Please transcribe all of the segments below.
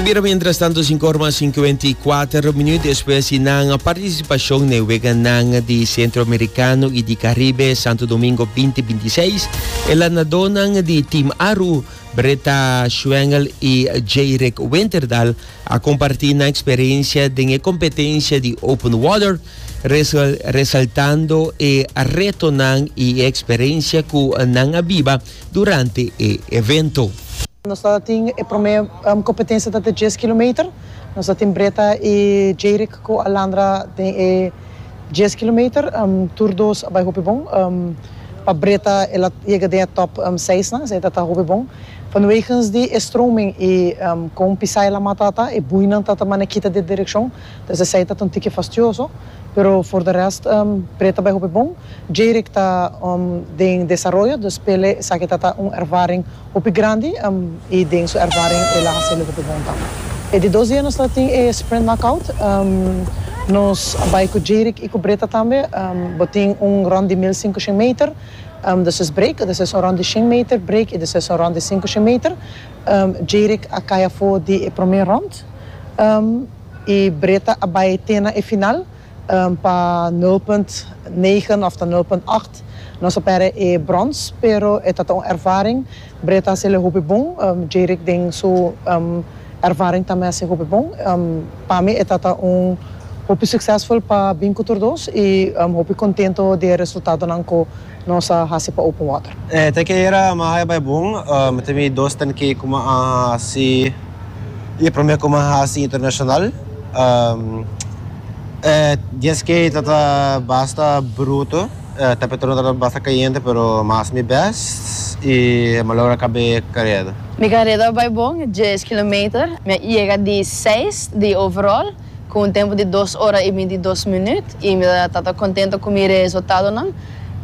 Ta bira mientras tanto cinco horas más 54 minutos después di nan participación ne wega nan di Centroamericano y di Caribe Santo Domingo 2026 e lanadó nan di Team Aru Britta Schwengel y Jayrick Winterdal a compartí nan experiencia den e competencia di Open Water resaltando e retonan y e experiencia cu nan a biba durante e evento. Nos ta tin e prome competencia ta te dies kilometer, nos ta tin Breta y Jayrick cu Alandra den e dies kilometer, tur dos a bay hopi bon, pa Breta el a yega den e top seis nan, esey ta ta hopi bon. Vanwegens di e stroming y con pisai la mata ta, e bueynan ta ta mana kita di e direccion, entonces esey ta ta un tiki fastioso. Pero for de rest pre ta bai hopi bon. Jayrick ta den desaroyo dus pele esaki ta ta un ervaring hopi grandi y den su ervaring el a hace'lo hopi bon tambe. E di dos dia nos ta tin e sprint knockout nos a bai cu Jayrick y cu Breta tambe bo tin un rond di mil sincushen meter despues break despues un rond di shen meter break y despues un rond di sincushen meter Jayrick a cay afo di e prome rond. E breta a bai te na e final pa nul punt negen of ta nul punt acht. Nos a pèrdè e brons, pero e ta ta un ervaring. Breta a seli hopi bon. Jayrick den su ervaring tambe a hasi hopi bon. Pa mi e ta ta un hopi suksesful pa bin ku tur dos i hopi kontento di e resultadonan ku. Nos a hasi pa open water. E ten ke era ma haya bai bon. Mi tin mi dos ten ke ku ma a hasi i e prome ku ma hasi internashonal. E dies ke ta ta basta bruto. E temperatuur no ta ta basta kayente pero ma hasi mi best i ma logra kabe kared. Mi kareda bai bon dies kilometer. Mi a yega di seis di overall. Ku un tempu di dos ora i binti dos minüt, i mi ta tata kontentu ku mi reesultadonan,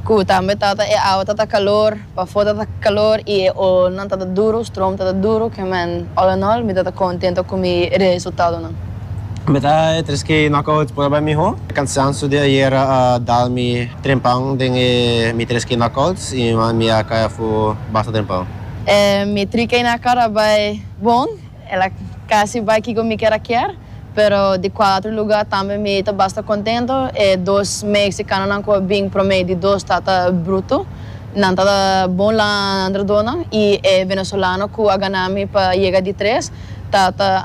ku tambe tata e awa ta ta kalor, pafó ta ta kalor i e olnan ta ta duru, strom ta ta duru, kemen all in all mi ta ta kontentu ku mi reesultadonan. Mi ta e tres ke knockout prueba e mihó. E kansansu di ayera a dal mi trempan den e mi tres ke knockouts i mi a kai afu basta trempan. E mi tri ke na kara bai bon. El a casi bay kico mi kier a kier, pero di cuatro lugar tambe mi ta basta contento. E dos Mexicanonan cu a bin prome di dos ta ta bruto. Nan ta ta bon landrodonan y e Venezolano cu a gana mi pa yega di tres ta ta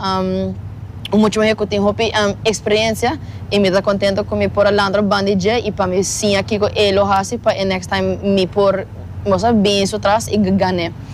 un mucho muher cu tin hopi experiencia y mi ta ta contento cu mi por a landro bandi dje y pa mi siña kico e lo haci pa e next time mi por, bo sa, bin su tras y gan'e.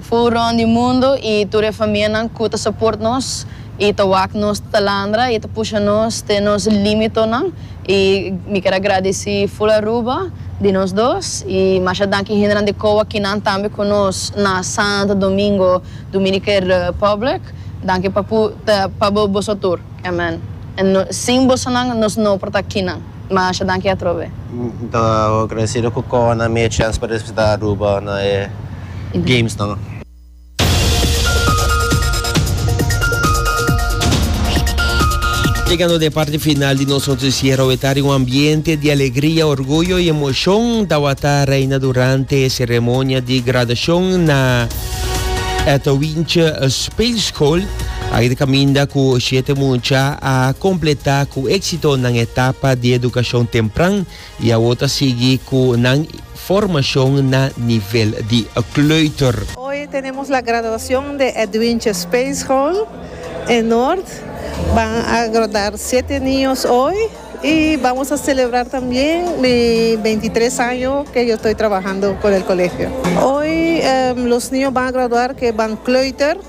Fu rond di mundo i tur e famianan ku ta soport nos i ta wak nos talandra i ta pusha nos te nos limitonan i mi kier a gradisi ful Aruba di nos dos i masha danki hendenan di Kowa kinan tambe ku nos na Santo Domingo Dominican Republic danki pa bo boso tur amen sin bosonan nos no por ta kinan. Masha danki atrobe. Mi ta agradecido cu Kona mi e chance pa representa Aruba na e games nan. Chegando na e parti final di nos noticiero awe ta riba un ambiente di alegria, orguyo y emocion tawata reina durante e ceremonia di graduacion na Ethel Wintje Speelschool. Aki ta caminda cu siete mucha a completa cu exito nan etapa di educacion tempran y awor ta sigui cu nan formacion na nivel di kleuter. Hoy tenemos la graduacion de Edwintje Speelschool e Noord. Ban a graduar siete niños hoy y vamos a celebrar tambien mi veintitres año que yo estoy trabajando con el colegio. Hoy los niños ban a graduar que ban kleuter.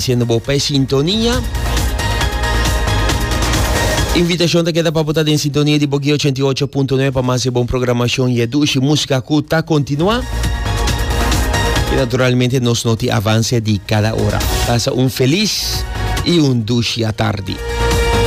Siendo bo pa e sintonia. Invitacion ta keda pa bo ta den sintonia di Boki 88.9 pa mas e bon programacion y e dushi musica cu ta continua. Y naturalmente nos noti avance di cada ora. Pasa un feliz y un dushi atardi.